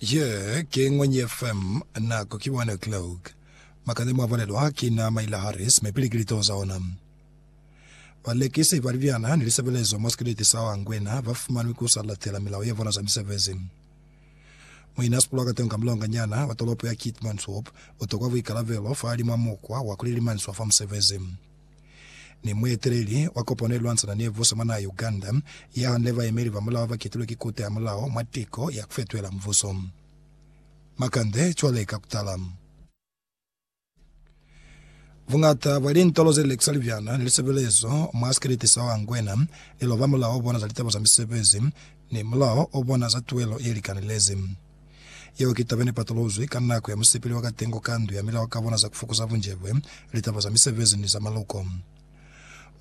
Ye ki Ñwenye FM, nako ki 1 o'clock. Makande mwa bulelwa ki na Myla Harris mi pili ki litoo za ona. Balekisi ba libyana ni lisebelezo mwa sikeleti sa Anguena ba fumanwi ku sa latela milao ya bona za misebezi. Muina sipulwa ka tonga mulonga nyana wa tolopo ya Keetmanshoop u tokwa buikalabelo fa li mwa mukwa wa ku lilimaniswa fa musebezi. Ni mueteleli wa kopano ye lwantsana ni mvuso mwa naha ya Uganda, ya hanile bayemeli ba mulao ba ketilwe ki Kute ya Mulao mwa tiko ya kufetuhela mvuso. Makande cwale ka kutala. Buñata bwa lintolo ze lekiswa libyana ni lisebelezo mwa sikeleti sa Wangwena li loba mulao o bona za litaba za misebezi ni mulao o bona za tuelo ye likanelezi. Yeo ki taba nepatolozwi ka nako ya musipili wa katengo ka ndu ya milao ka bona za kufokoza bunjebwe, litaba za misebezi ni za maluko.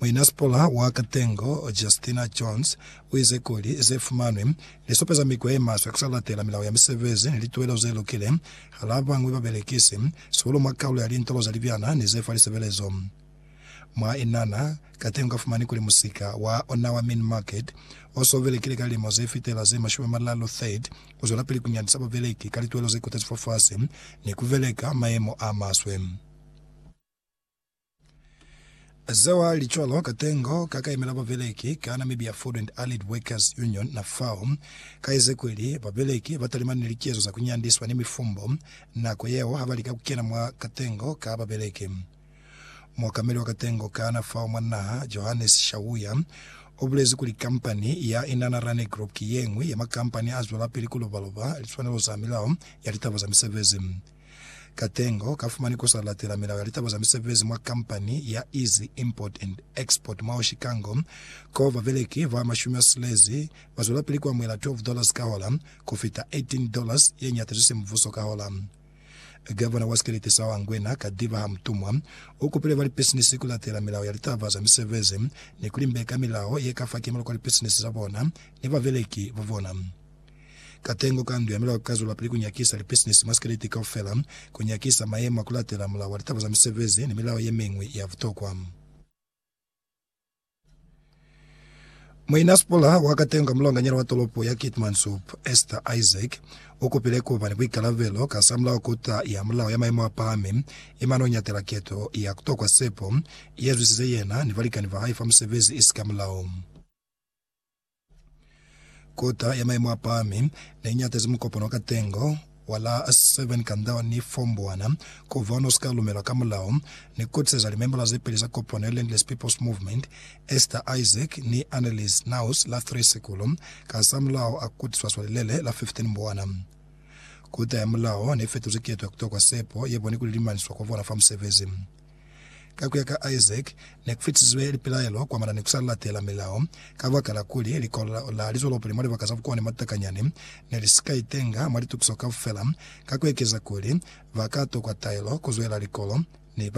Muinasipula wa katengo, Justina Jones, uize kuli ze fumanwi li supeza mikwa ye maswe kusa latela milao ya misebezi ni lituwelo ze lukile hala bañwi babelekisi, sihulu mwa kalulo ya lintolo ze libyana ni ze fa lisebelezo. Mwa inana, kateñi ukafumani kuli musika wa ona wa Mini Market, o so belekile ka lilimo ze fitela ze mashumi a malalu 30, u zwelapili ku nyandisa babeleki ka lituelo ze kotezi fafasi ni ku beleka mayemo a maswe. Zeo ha li cwalo, katengo ka ka yemela babeleki ka Namibia Food and Allied Workers Union, NAFAW, ka ize kuli, Babeleki ba talimani ni likezo za ku nyandiswa ni mifumbo nako yeo ha ba lika ku kena mwa katengo ka babeleki. Muokameli wa katengo kana fao mwa naha, Johannes Shawuya, u bulezi kuli kampani ya Inanna Rani Group ki ye ñwi ya makampani a zwelapili ku lobaloba liswanelo za milao ya litaba za misebezi. Katengo ka fumani ku sa latela milao ya litaba za misebezi mwa kampani ya Easy Import and Export mwao Chikango ko babeleki ba mashumi a silezi ba zwelapili ku amuhela 12 dollars ka hola ku fita 18 dollars ye ñata zwi si mubuso ka hola. Gavana wa sikelete sa Anguena, Kadiba Hamutumwa, u kupile ba lipisinisi ku latela milao ya litaba za misebezi ni ku limbeka milao ye ka fa kimelo kwa lipisinisi za bona ni babeleki ba bona. Katengo ka Ndu ya Milao ka zwelapili ku nyakisa lipisinisi mwa sikelete kaufela, ku nyakisa mayemo a ku latela Mulao wa Litaba za Misebezi ni milao ye miñwi ya butokwa. Muinasipula wa Katenga mulonganyana wa tolopo ya Keetmanshoop, Esther Isaac, ukupile kuba ni buikalabelo kasamulaho kota ya mulao ya maemo apahami, imane unyatela keto ya kutokwa sepo yezwisize yena ni balikani bahae fa musebezi isika mulao. Kota ya maimo a pahami ne i ñatezi mukopano wa katengo wa la 7 kanda wa ni Fomboana ku ba o ne u si ka lumelwa ka mulao, ni kutiseza limembola ze peli za kopano ya Landless People's Movement, Esther Isaac ni Annelies Naus la 3 Sikulo, kasamulaho a kutiswa swa lilele la 15 Mbwana. Kota ya mulao ne i fetuzi keto ya ku tokwa sepo ye boni kuli limaniswa kwa bona fa musebezi. Ka ku ya ka Isaac, ne ku fitisizwe lipilaelo kwamana ni ku sa latela milao. Kabakala kuli likolo la lizwelopili mwa libaka za bukoni mwa takanyani ne li si ka itenga mwa litukiso kaufela, ka ku ekeza kuli ba ka tokwa taelo ku zwela likolo, ne ba